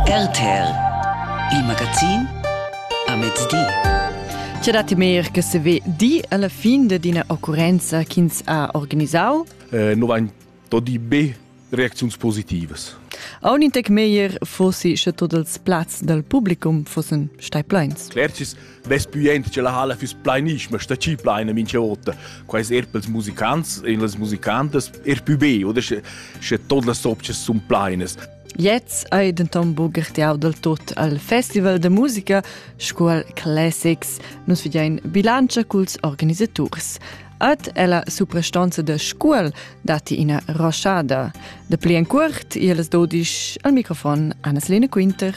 RTL Il magazin a mezdi. C'è dati mer che se ve di alla fin d'ina occurenza ch'ins ha organisau? Eh, 90 di B reaczioni positive. A un intec meglier fossi sche tots els plazs dal publicum fossen stai pleins. Clercis Best buient che la halla füss plainischma sta chi plaina mincha vota. Quai es er pels musicants e las musicantas er pü be oder sche, sche tot las opças sun plainas. Jetzt ei denton bugertiau del tot al Festival de musica sco al Classics. Nus vedein bilantscha culs organisaturs. Ed ella suprastanza da Scuol datti ina roschada. Da pli en curt, iels dodisch al microfon Anna-Lena Quinter.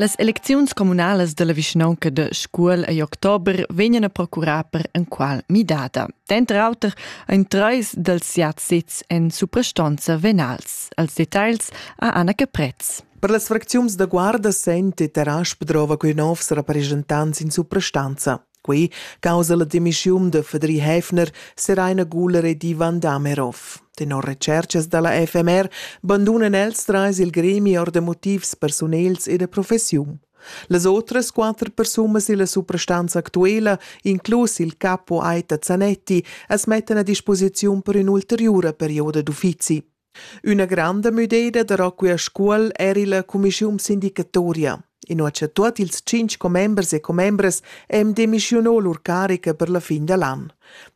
Las elecziuns comunales della vischnaunca de Scuol ei october vegnan a procurar per enqual midada. Denter auter ein treis dels siat sezs en suprastonza venals. Als details a Anna Caprez. Per las fracziuns da Guarda sente Terasch drova quei novs rappresentants in suprastanza. Quei causa la demissiun de Fedri Häfner, Seraina Guller e Ivan Damerov. Tenor recercas dalla FMR bandunan els treis il gremi or de motivs personels e de professiun. Las outras quater persunas illa suprastanza actuela, inclus il capo Aita Zanetti, as mettan a disposiziun per ün'ulteriura perioda d'uffizi. Üna granda müdeda da Rocca Scuol eir illa cumischiun sindicatoria. Inua cha tuot ils tschinch commembers e commembras hem demischiunò lur carica per la fin da l'an.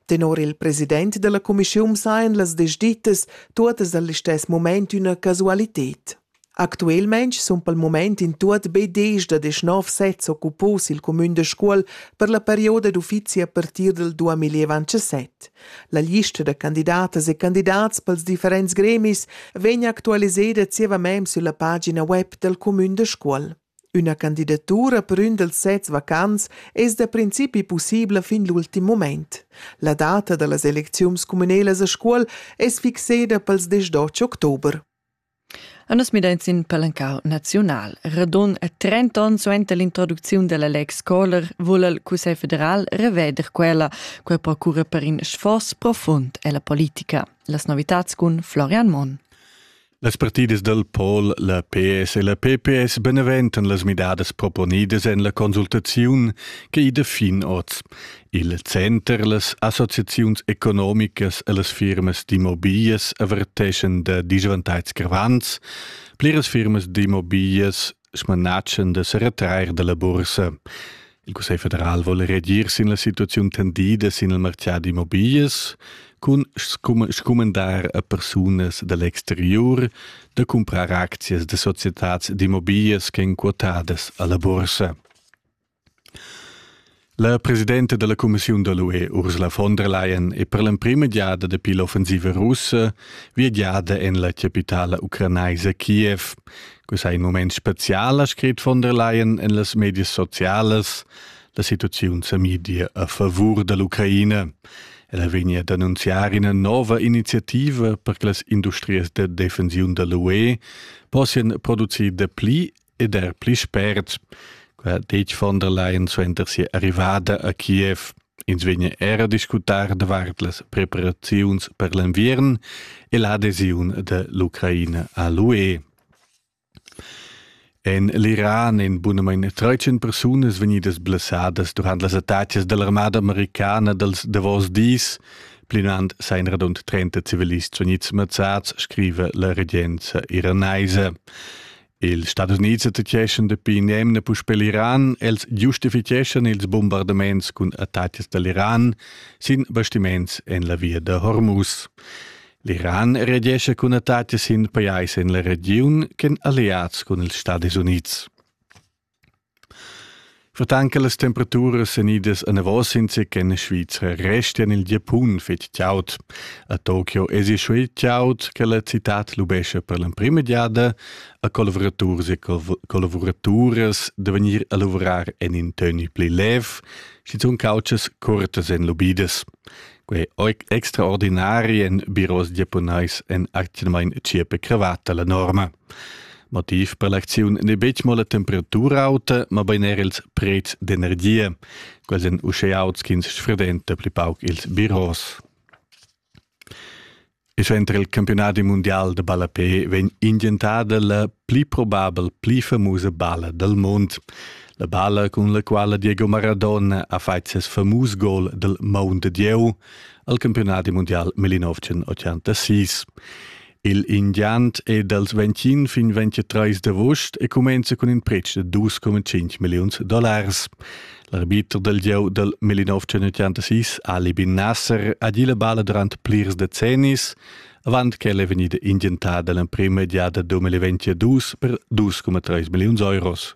Tenor il president da la cumischiun sajan las desdittas tuottas al listess mumaint üna casualited. Actuelmain sun pel mumaint in tuot be desch da deschnov sets occupos i'l cumün da Scuol per la perioda d'uffizi a partir dal 2027. La lista da candidatas e candidats pels differents gremis vegn actualiseda zievamaing sülla pagina web dal cumün da Scuol. Üna candidatura per ün dals sets vacants es da principi pussibla fin l'ultim mumaint. La data da las elecziuns cumünelas a Scuol es fixeda pels 18 october. E nus midain sin palencau naziunal. Radun e trent'onns suenter l'introducziun dalla Lex Kohler vul il Cussegl federal reveder quella, quei procura per in sforz profund ella politica. Las novitads cun Florian Monn. Las partidas del Pol, la PS e la PPS beneventan las midadas proponidas en la consultaziun che ida fin oz. Il center las associaziuns economicas e las firmas d'immobiglias averteschan da disvantags gravants. Pliras firmas d'immobiglias smanatschan da se retrair dalla bursa. Il Cussegl federal vuole reagir sin la situazione tendida sin il mercato d'immobiglias cun scumandar a persunas dall'exterior da comprar aczias da societats d'immobiglias che èn quotadas alla bursa. La presidenta dalla cumissiun da l'UE Ursula von der Leyen è per l'emprima giada dapi l'offensiva russa viagiada en la capitala ucranaisa Kiev. Quest è in moment spezial, ha scrit von der Leyen en las medias socialas. La situaziun sa media a favur dall'Ucraina. Ella vegnia ad annunziar ina nova iniziativa per che las industrias da defensiun dall'UE possian producir dapli ed er pli spert, qua detg von der Leyen suenter sia arrivada a Kiev, ins vegna era discutar davart las preparaziuns per l'enviern e l'adesiun de l'Ucraina a l'UE. En l'Iran en bunamain 13 persunas vegnidas blessadas durant las attacas dell'armada americana dels davos dis, plinant sein radund 30 civilists vegnids mazzats, scrive la regenza iranaisa. Il Stadis Unids attaccheschan dapi nemna puspè l'Iran. Els giustificheschan ils bombardaments cun attacks da l'Iran sin bastiments en la via da Hormuz. L'Iran reagescha cun attacks sin pajais en la regiun ch'èn alleads cun ils Stadis Unids. Surtant che las temperaturas èn idas anavos sinsequent en Svizra restian il Giapun fetg chaud. A Tokio èsi schuil chaud che la citad lubescha per l'emprima giada a collavuraturs e collavuraturas da vegnir a lavorar en in toni pli lev, schizunt couchas curtas èn lubidas. Quei extraordinari en biros giapunais en atgnamain tschiepe cravatta la norma. Motiv per l'acziun n'è betg mo la temperatura auta, mabain er ils prezs d'energia. Quels èn uschè auts ch'ins sfredenta pli pauc ils biros. E suenter il campionat mundial da ballapé vegn ingentada la pli probabel pli famusa balla dal mund. La balla cun la quala Diego Maradona ha fatg ses famus gol dal Mount Dieu al campionat mundial 1986. Il indiant è dals 25 fin 23 d'avust e cumenza cun in pretsch da 2,5 milliuns dollars. L'arbiter dal gieu dal 1986, Ali bin Nasser, ha gì la balla durant plirs decennis, avant ch'ella è vegnida indientada l'emprima giada 2022 per 2,3 milliuns euros.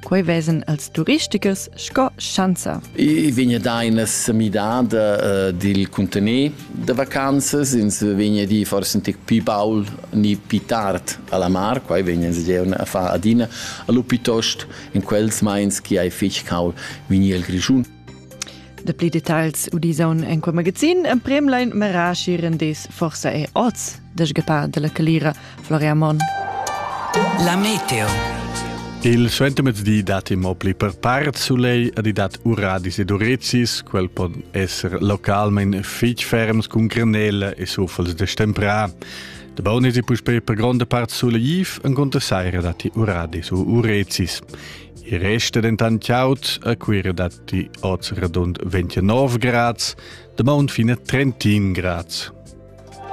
Quei vesan els turistichers sco schanza. I vegna da ina semidada uh, dil contener da vacanzas, ins vegna di forse un tic più baul ni più tard alla mar, quai vegna ins giaun a far adina, allo piuttost in quels meins che hai fich caul vegni il Grischun. De pli detagls udisaun en quei magazin emprem lein merashi rendis forsa e oz desgepar della calira Floria Mon. La meteo. Il suentemezdi dat mo pli per part sulei ad dat uradis ed urezis, quel pon esser localment fitg ferms cun granella e sufels de stemprà. De bonis e puspei per gronda part sulei en conta saira dati uradis u urezis. I resta dentant chaud a Cuira datti oz radund 29 grads, da maun fina 31 grads.